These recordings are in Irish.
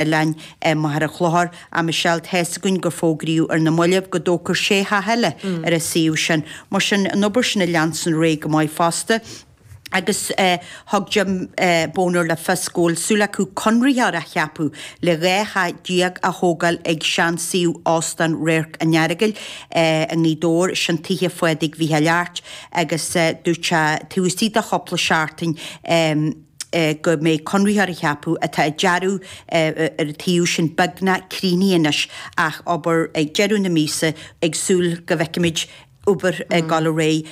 Oileáin. Eh, Machaire Chlochair, ah, Michelle, tá a fhios againn gur fógraíodh ar na mallaibh go dtógfar sé theach eile ar an suíomh sin. Mar sin, an obair sin ag leanstan ar aghaidh go maith fosta. Agus, eh, thug Jim, eh, Boner le fios go bhfuil súil acu conraitheoir a cheapadh le dhá theach déag a thógáil ag seansuíomh Óstán Radharc an Earagail, eh, i nGaoth Dobhair, is sin Tithe Phádraig Mhicheáil Airt, agus, eh, dúirt sé, taobh istigh de chúpla seachtain, eh, go mbeidh conraitheoir á cheapadh. Tá an dearadh ar an tsuíomh sin beagnach críochnaithe anois ach obair ag deireadh na míosa ag súil go bhfeicfimid obair ag dul ar aghaidh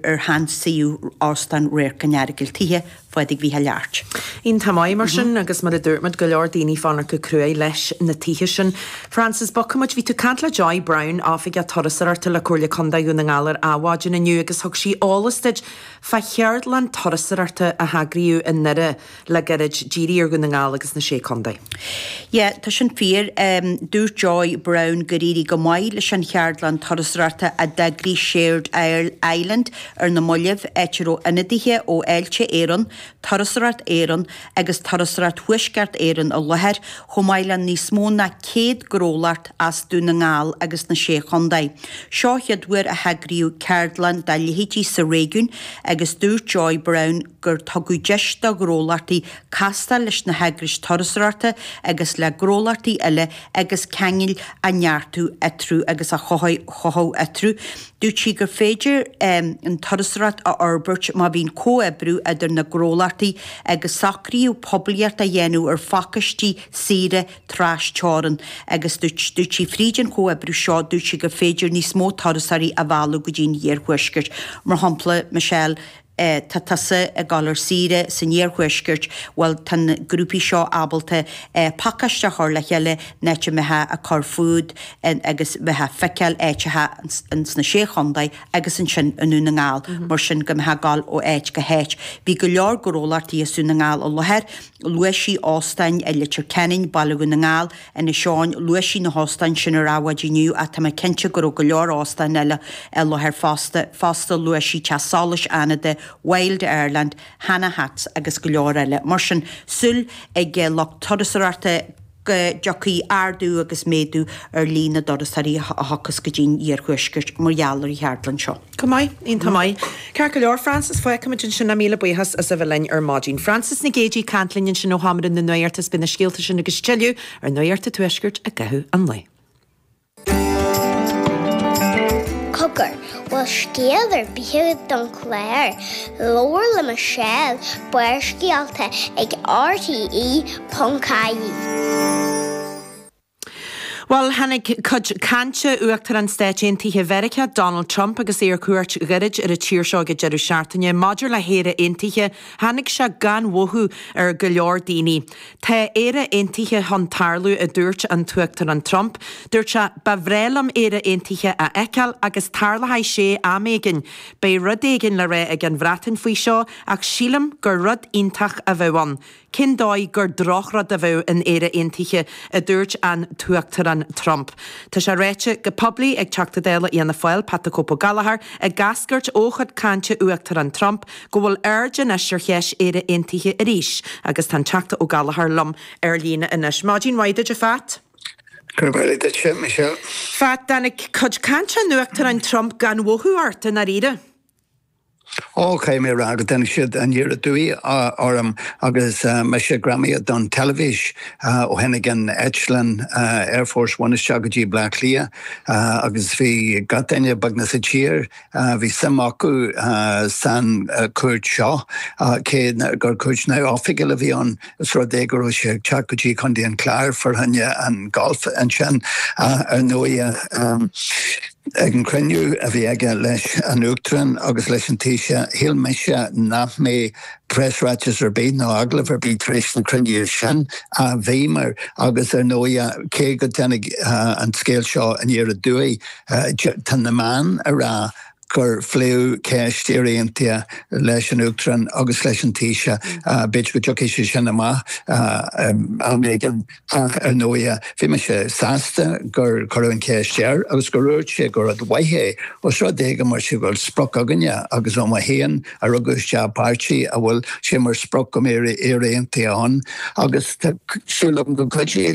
ar shean-suíomh Óstán Radharc an Earagail, Tithe Phádraig Mhicheáil Airt. Iontach maith mar sin agus mar a dúirt muid go leor daoine ag fanacht go cruaidh leis na tithe sin. Frances, Bogfaidh muid, bhí tú ag caint le Joy Browne, Oifigeach Turasóireachta le Comhairle Contae Dhún na nGall ar an mhaidin inniu agus thug sí eolas duit Fá cheardlann turasóireachta a heagraíodh i nDoire le gairid díríodh ar Dhún na nGall agus na Sé Contae. Yeah, tá sin fíor. Dúirt Joy Browne gur éirigh go maith leis an cheardlann turasóireachta a d'eagraigh Shared Island ar na mallaibh, áit a raibh ionadaithe ó Fháilte Éireann, Turasóireacht Éireann, agus Turasóireacht Thuaisceart Éireann i láthair, chomh maith le níos mó ná 100 gnólacht as Dún na nGall agus na Sé Chontae. Seo an chéad uair a heagraíodh ceardlann dá leithéidí sa réigiún agus dúirt Joy Browne gur tugadh deis do ghnólachtaí castáil leis na heagrais turasóireachta agus le gnólachtaí eile agus ceangail a neartú eatarthu agus a chothú eatarthu. Dúirt sí gur féidir an turasóireacht a fhorbairt má bhíonn comhoibriú idir na gnólachtaí agus socraíodh poiblíocht a dhéanamh ar phacáistí saoire trasteorann agus dúirt sí fríd an chomhoibriú seo dúirt sí gur féidir níos mó turasóirí a mhealladh go dtí an iarthuaisceart mar shampla Michelle eh, tá tusa ag dul ar saoire san iarthuaisceart, bhuel, tá na grúpaí seo ábalta, eh, pacáiste a chur le chéile, an áit a mbeifeá a' cur fút agus bheifeá a' feiceáil áiteacha in sna Sé Chontae agus ansin i nDún na nGall, mar sin go mbeifeá a' gabháil ó áit go háit. Bhí go leor gnólachtaí as Dún na nGall i láthair, luaigh sí óstáin i Leitir Ceanainn, Baile Dhún na nGall, Inis Eoghain, Luaigh sí na hóstáin sin ar an mhaidin inniu ach tá mé cinnte go raibh go leor óstán eile i láthair fosta. Fosta, luaigh sí Teach Solais Fhánada, Wild Ireland, Hanna Hats agus go leor eile. Mar sin, súil ag lucht turasóireachta go dtiocfaidh ardú agus méadú ar líon na dturasóirí a thiocfas go dtí'n iarthuaisceart mar gheall ar an cheardlann seo. Go maith, iontach maith. Ceart go leor, Frances, feicfimid ansin a míle buíochas as a bheith linn ar maidin. Frances Nic Géidigh ag caint linn ansin ó Sheomra na Nuachta is beidh na scéalta sin agus tuilleadh ar Nuacht an Tuaiscirt i gcaitheamh an lae. Cogar, bhfuil scéal ar bith agat don chlár, labhair le Michelle, Barrscéalta ag RTÉ.ie. Bhuel, tháinig cuid cainte Uachtarán Stáit Aontaithe Mheiriceá, Donald Trump, agus é ar cuairt ghairid ar an tír seo ag an deireadh seachtaine, maidir le hÉire Aontaithe, tháinig sé gan mhothú ar go leor daoine. Tá Éire Aontaithe chun tarlú, a dúirt an tUachtarán Trump. Dúirt sé, Ba bhreá liom Éire Aontaithe a fheiceáil agus tarlóidh sé am éigin. Beidh rud éigin le rá ag an Bhreatain faoi seo ach sílim gur rud iontach a bheadh ann. Cén dóigh gur drochrud a bheadh in Éire Aontaithe, a dúirt an tUachtarán Trump. Tá sé ráite go poiblí ag Teachta Dála Fhianna Fáil, Pat the Cope O'Gallagher, ag eascairt ó chuid cainte Uachtarán Trump go bhfuil aird anois ar cheist Éire Aontaithe arís agus tá an Teachta O'Gallagher liom ar líne anois. Maidin mhaith duit, a Phat. Gurb amhlaidh duit, a Michelle. Phat, tháinig cuid cainte an Uachtaráin Trump gan mhothú ort dáiríre? Ócé, mír agat. Tháinig sé aniar aduaidh orm agus mise greamaithe don teilifís. Ó tháinig an eitleán Air Force One isteach go dtí Bleá Cliath agus bhí gach duine beagnach sa tír, bhí suim acu san cuairt seo cé gur cuairt neamhoifigiúil a bhí ann. Os rud é go raibh sé ag teacht go dtí Contae an Chláir, fá choinne an golf ansin ar ndóigh. Ag an chruinniú a bhí aige leis an Uachtarán agus leis an Taoiseach, shíl mise nach mbeadh preasráiteas ar bith nó agallamh ar bith tar éis na cruinnithe sin. Ach bhíomar agus ar ndóigh cé go dtáinig an scéal seo aniar aduaidh, tá na meáin ag rá gur phléadh ceist Éire Aontaithe leis an Uachtarán agus leis an Taoiseach. B'fhéidir go dtiocfaidh sé sin amach am éigin. Ach ar ndóigh, bhí mise sásta gur cuireadh an cheist air agus gur dhúirt sé gur rud mhaith é, os rud é go mba é go bhfuil sprioc againne agus mé mo fhéin a rugadh isteach i bpáirtí a bhfuil sé mar sprioc go mbeadh Éire Aontaithe ann agus tá súil agam go gcuideoidh